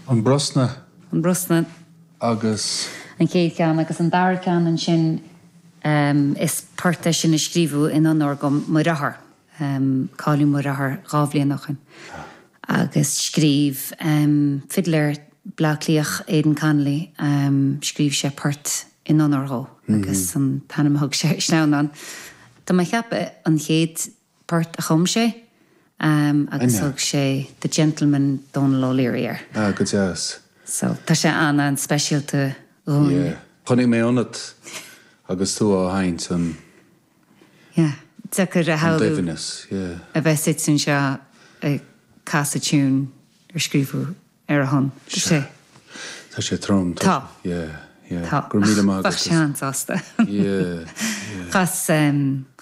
An Brosna. An Brosna. Agus. An chéad cheann. Agus an dara ceann ansin is port é sin a scríobhadh in onóir dho mo dheartháir. Cailleadh mo dheartháir dhá bhliain ó shin. Agus scríobh fidléir i mBleá Cliach, Aidan Connolly, scríobh sé port in onóir dhó agus an t-ainm a thug sé... Sleamhnán. Tá mé a' cheapadh an chéad port a chum sé agus thug sé The Gentleman Dónal O'Leary air. Ah, go deas. So, tá sé an-an-speisialta dhúinn. Yeah. Chonaic mé ionat agus tú á sheinnt an. Yeah. Deacair a shamhlú. An doimhneas, yeah. A bheith suite anseo ag casadh tiún ar scríobhadh ar a shon. Tá sé. Tá sé trom. Tá. Tá. Yeah. Yeah. Tá. Go raibh míle maith agat. Ach bheadh sé an-sásta. Yeah. Chas,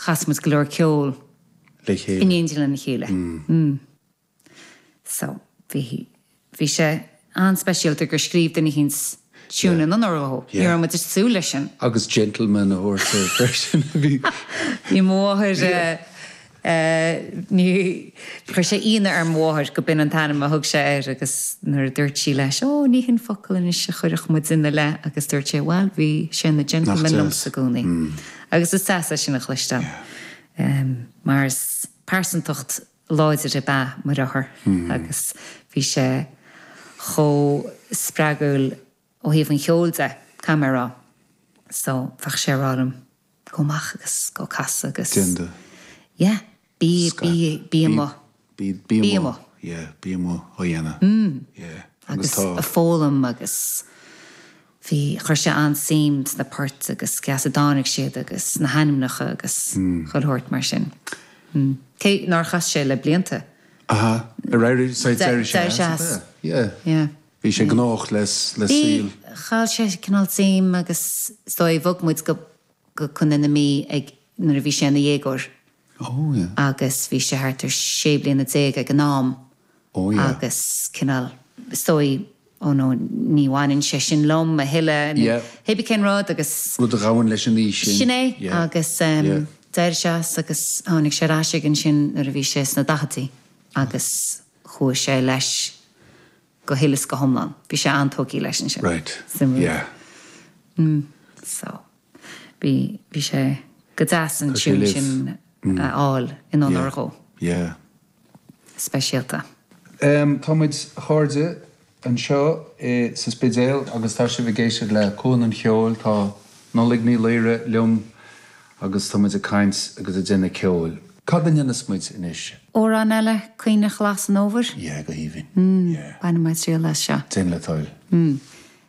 chas muid go leor ceol. Le chéile. In éindí lena chéile. So, bhí, bhí sé an-speisialta gur scríobh duine éicint tiún in onóir dhó. Ní raibh muid ag súil leis sin. Agus gentleman a thabhairt air freisin. Bhí mo mháthair ní, chuir sé ionadh ar mo mháthair gob in an t-ainm a thug sé air agus nuair a dúirt sí leis Ó ní shin focal anois a chuirfeadh muide ina leith agus dúirt sé bhuel bhí sé ina gentleman liomsa i gcónaí. Agus is deas é sin a chloisteáil mar is pearsantacht láidir ab ea mo dheartháir agus bhí sé chomh spreagúil ó thaobh an cheoil de, caithfidh mé a rá. So, bheadh sé a' rá liom, gabh amach agus gabh a' casadh agus Déan é. yeah, bí, bí, bí amuigh. Bí, bí amuigh. Bí amuigh. Yeah, bí amuigh á dhéanamh. Yeah, agus tá. Agus a' foghlaim agus. Bhí, chuir sé an-suim sna poirt agus cé as a dtáinig siad agus na hainmneacha agus chuile shórt mar sin. Cé nár chas sé le blianta. Aha, ar éirigh, so d'éirigh sé as. D'éirigh sé as, yeah. Yeah. Bhí sé gnóthach le saol. Bhí, chaill sé cineál suim agus is dóigh, bhog muid go, go Contae na Mí ag, nuair a bhí sé ina dhéagóir. Oh yeah. Agus bhí sé thart ar sé bliana déag ag an am. Oh yeah. Agus cineál, is dóigh, oh no, ní bhaineann sé sin liom a thuilleadh. Yeah. Hé bí cén rud agus. Rud a ghabhann leis an aois sin. Sin é. Yeah. Agus em. Yeah. D'éirigh sé as agus tháinig sé ar ais aige ansin nuair a bhí sé sna daicheadí agus chuaigh sé leis go huile is go hiomlán. Bhí sé an-tógtha leis ansin. Right. Suimiúil. Yeah. Mm. So. Bhí, bhí sé go deas an tiún sin a fháil in onóir dhó. Yeah. Speisialta. Em, tá muid, a chairde, anseo i, sa Spidéal agus tá sibh ag éisteacht le Cuan an Cheoil, tá Nollaig Ní Laoire liom agus tá muid ag caint agus ag déanamh ceoil. Cad a dhéanfas muid anois? Amhrán eile, Caoineadh Ghlas an Fhómhair? Yeah, go haoibhinn. Yeah. Bainfidh mé triail as seo. Déan le toil. Mm.